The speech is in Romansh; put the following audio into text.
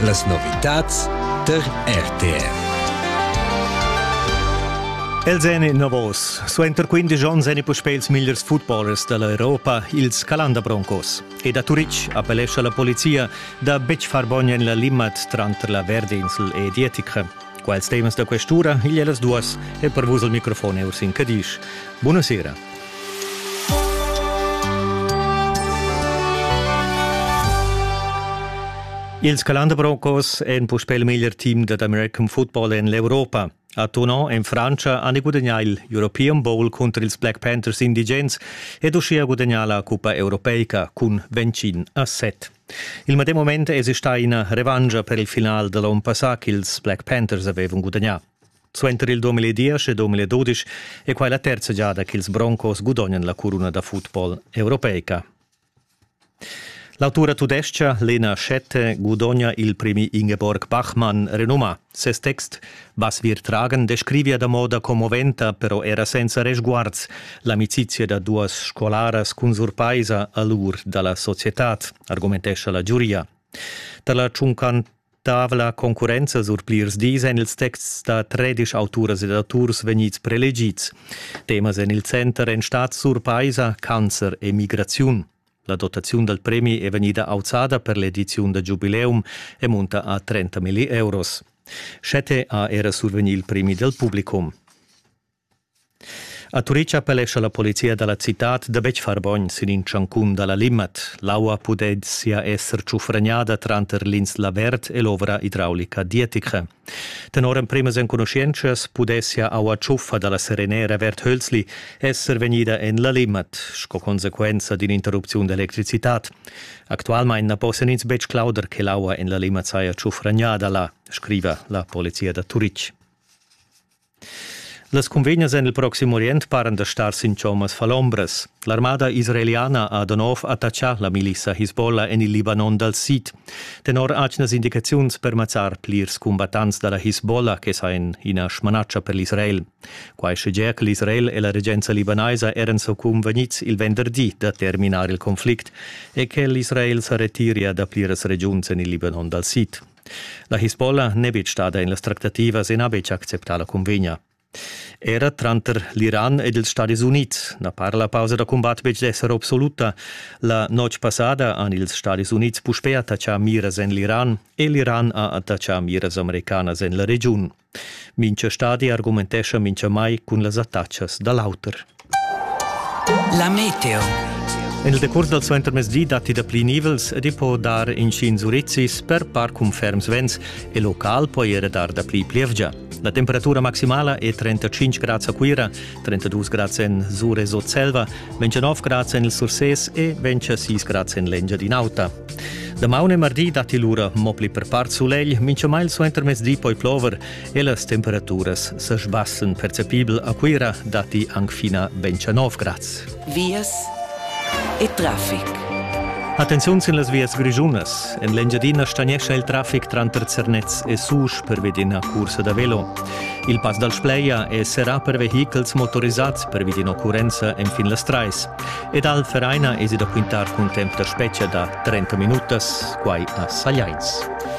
Las novitads tar RTR. Els èn innovos. Suenter 15 onns èn puspè ils migliers footballers da l'Europa ils Calanda Broncos. E da Turitg appellescha la polizia da betg far bogn en la Limmat tranter la Verdinsel e Dietica. Quels temas da questura igl è las duas e per vus il microfon è Ursin Cadisch. Buonasera. Ils Calanderbroncos èn puspè il meglier team dad American football en l'Europa. A Tonon en Frantscha han gudagnà il European Bowl cunter ils Black Panthers indigens ed uschia gudagnà la cuppa europeica cun Vencin a set. Il medem moment èsi stà ina revancha per il final da l'onn passà ch'ils Black Panthers avevan gudagnà. Suenter il 2010 e 2012 è quai la terza giada ch'ils Broncos gudognan la curuna da football europeica. L'autura tudescha Lena Schette gudogna il premi Ingeborg Bachmann renumà. Ses text Basvir tragen descrivia da moda commoventa, però era senza resguards, l'amicizia da duas scolaras cun surpaisa a l'ur da la societad, argumentescha la giuria. Tar la tschuncantavla concurrenza sur plirs dis èn ils texts da tredisch auturas ed auturs vegnids prelegids. Temas en il center èn stads surpaisa, cancer e migraziun. La dotaziun dal premi è vegnida auzada per l'ediziun da giubileum e munta a 30 milli euros. Schette ha era survegni il premi del publicum. A Turic appellescha la polizia dalla citad da betg far bogn sin in tschancun dalla Limmat. L'aua pudezia esser tschufragnada tranter l'insla Verd e l'ovra idraulica dietica. Tenor emprimas enconuschientschas pudessia aua tschuffa da la serenera Verd Hölzli esser vegnida en la Limmat sco consequenza d'in'interrupziun d'electricitad. Actualmain na possan ins betg clauder che l'aua en la Limmat saja tschufragnada là, scriva la polizia da Turitg. Las cunvegnas en il Proxim Orient paran da star sin chommas falombras. L'armada israeliana ha da nov attaccà la milissa Hisbollah en il Libanon dal sid. Tenor atgnas indicaziuns per mazzar plirs combattants da la Hisbollah che sa en ina smanatscha per l'Israel. Quai schegia che l'Israel e la regenza libanaisa eran so convegnids il venderdi da terminar il conflict e che l'Israel sa retiria da pliras regiuns en il Libanon dal sid. La Hisbollah n'è betg stada en las tractativas e n'ha betg acceptà la cunvegna. Era tranter l'Iran ed ils Stadis Unids na para la pausa da cumbat betg d'esser absoluta. La notg passada han ils Stadis Unids puspè attachà miras en l'Iran e l'Iran ha attachà miras americanas en la regiun. Mincha stadi argumentescha minchamai cun las attachas da l'auter. La meteo. En il decurs dal suentermezdi datti dapli nivels ed i po dar inschigns urizis per par cun ferms vents e local po era dar dapli plievgia. La temperatura maximala è 35 grads a Cuira 32 grads en Sur e Sutselva, 29 grads en il Sursés e 26 grads en l'Engiadin'Auta. Damaun e mardi datti lura mo pli per part sulegl, mincha mail suenter mezdi poi plover e las temperaturas sa sbassen. Percepibel a Cuira datti anc fina 29 grads. vias e traffic. Attenziun sin las vias grischunas. En l'Engiadina stagnescha il traffic tranter Zernez e Susch pervi d'ina cursa da velo. Il pass dal Spleia è serrà per vehichels motorisads pervi d'occurrenza enfin las trais. Ed al Vereina esi da quintar cun temp da spetga da 30 minutas, quai a Sagliains.